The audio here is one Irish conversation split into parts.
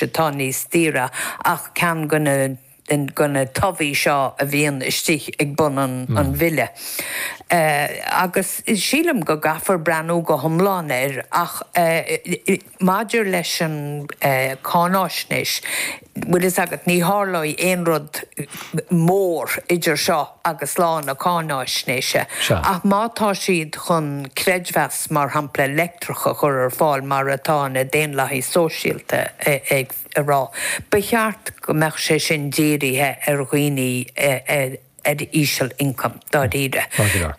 atá níos daoire ach ceann de na tobhaigh seo a bhíonn istigh ag bun an bhile. Agus sílim go gcaithfear breathnú go hiomlán air, ach maidir leis an cháináisnéis, bhfuil fhios agat, ní tharlóidh aon rud mór idir seo agus lá na cáináisnéise, ach má tá siad chun creidmheas, mar shampla, leictreach a chur ar fáil, mar atá na Daonlathaigh Sóisialta ag rá, ba cheart go mbeadh sé sin dírithe ar dhaoine ar íseal-ioncam, dáiríre,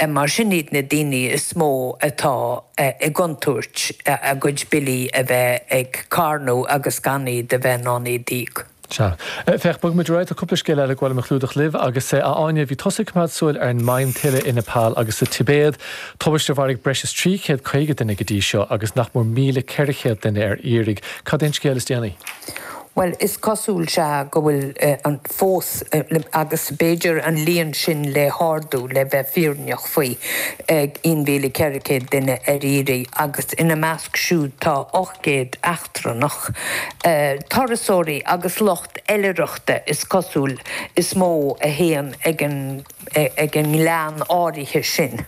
mar sin iad na daoine is mó atá i gcontúirt a gcuid billí a bheith ag carnadh agus gan iad a bheith in ann iad a íoc. Sea. Féach, bogaimis ar aghaidh, tá cúpla scéal eile gur mhaith liom a chlúdach libh, agus, a Áine, bhí tusa ag coimeád súil ar an maidhm tuile i Nepal agus sa Tibéad, tubaist a mharaigh breis is trí chéad caoga duine go dtí seo, agus nach mór míle ceithre chéad duine ar iarraidh. Cad é an scéal is déanaí? Bhuel, is cosúil, sea, go bhfuil an, fós, agus b'fhéidir an líon sin le hardú, le bheith fírinneach faoi, aon mhíle ceithre chéad duine ar iarraidh, agus ina measc siúd tá ocht. gcéad eachtrannach, turasóirí agus lucht oilithreachta, is cosúil, is mó a théann chuig an ngleann áirithe sin.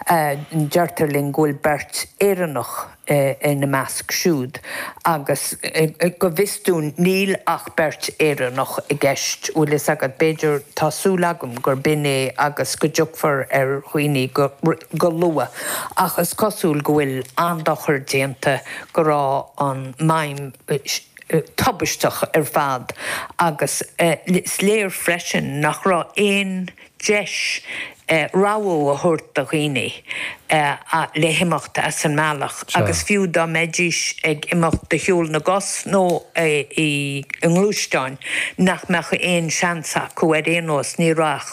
Deirtear linn go bhfuil beirt Éireannach ina measc siúd agus go bhfios dúinn níl ach beirt Éireannach i gceist, bhfuil fhios agat, b'fhéidir, tá súil agam gurb in é agus go dtiocfar ar dhaoine go. go luath, ach is cosúil go bhfuil an-dochar déanta, go raibh an maidhm tubaisteach ar fad agus is léir freisin nach raibh aon deis rabhadh a thabhairt do dhaoine le himeacht as an mbealach agus fiú dá mbeidís ag imeacht de shiúl na gcos nó i ngluaisteáin nach mbeadh aon seans acu ar aon nós, ní raibh ach.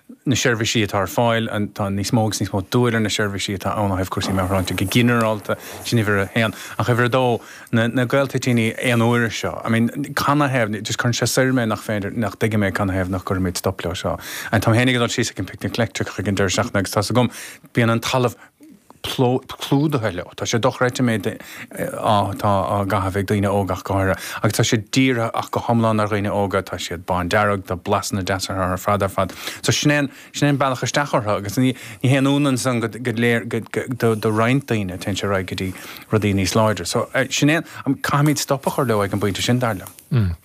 na seirbhísí atá ar fáil, an, tá níos mó agus níos mó brú ar na seirbhísí atá ann ó thaobh cúrsaí meabhairshláinte go ginearálta, sin uimhir a haon. Ach uimhir a dó, na, na galtoitíní aon uaire seo, I mean, canathaobh, just cuireann sé soir mé nach féidir, ní thuigim é canathaobh nach gcuirimid stop leo seo. Táim féin ag dul síos chuig an Picnic Leictreach ag an deireadh seachtaine agus tá's agam, bíonn an talamh, clúdaithe leo. Tá sé dochreidte an méid atá á gcaitheamh ag daoine óga ach go háirithe agus tá sé dírithe ach go hiomlán ar dhaoine óga, tá siad bándearg, tá blasanna deasa orthu ar fad ar fad. So sin é an, sin é an bealach isteach orthu agus ní, ní haon ionann san go, go léir, go, go, do, do roinnt daoine téann sé ar aghaidh go dtí rudaí níos láidre. So, eh, sin é an, caithfimid stop a chur leo ag an bpointe sin, dar liom. Mm.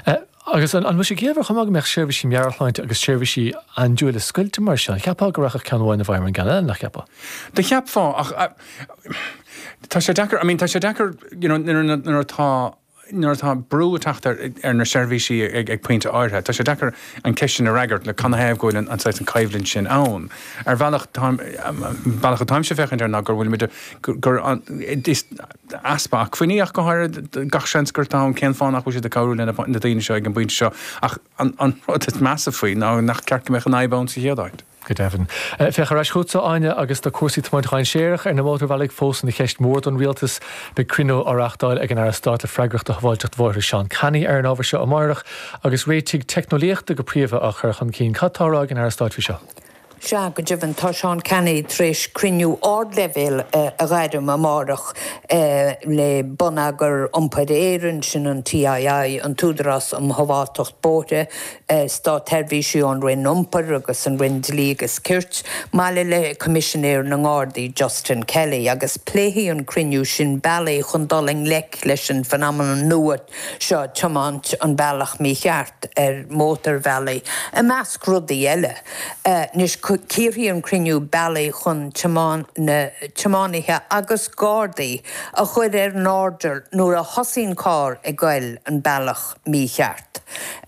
Eh, Agus an bhfuil sé ciallmhar chomh maith go mbeadh seirbhísí meabhairshláinte agus seirbhísí aindiúile scoilte mar sin? Cheapfá go rachadh ceann amháin i bhfeidhm ar an gceann eile, ná ceapfá? Do cheapfá, ach tá sé deacair, I mean, tá sé deacair you know nuair a, nuair atá, nuair atá brú ag teacht ar, ar na seirbhísí ag pointe áirithe, tá sé deacair an cheist sin a fhreagairt le canathaobh go bhfuil an, an saghas, an choimhlint sin ann. Ar bhealach táim, an bealach atáimse ag féachaint air ná gur, bhfuilimid, gur, gur an, is, easpa acmhainní ach go háirid, gach seans gurb in cén fáth nach bhfuil siad ag cabhrú le na daoine seo ag an bpointe seo ach an rud is measa faoi ná nach ceart go mbeadh an fhadhb ann sa chéad áit. Go deimhin. Féachaimis ar ais chugatsa, Áine, agus tá cúrsaí tiomáint dhainséarach ar na mótarbhealaí fós ina cheist mhór don Rialtas. Beidh cruinniú á reáchtáil ag an Aire Stáit le freagracht do Shábháilteacht Bhóithre Seán Canney ar an ábhar seo amárach agus réitigh teicneolaíochta go príomha á chur chun cinn. Cad tá á rá ag an Aire Stáit faoi seo? Sea, go deimhin, tá Seán Canney tar éis cruinniú ardleibhéil a ghairm amárach le Bonneagar Iompair Éireann, sin an TII, an tÚdarás um Shábháilteacht Bóithre, státsheirbhísigh ón Roinn Iompair agus an Roinn Dlí agus Cirt, maille le Coimisinéir na nGardaí, Justin Kelly, agus pléifidh an cruinniú sin bealaí chun dul i ngleic leis an phenomenon nua seo, tiomáint an bealach mícheart ar mhótarbhealaí, i measc rudaí eile. Anois cíorfaidh an cruinniú bealaí chun tiománaithe agus Gardaí a chur ar an airdeall nuair a thosaíonn carr ag goil an bealach mícheart.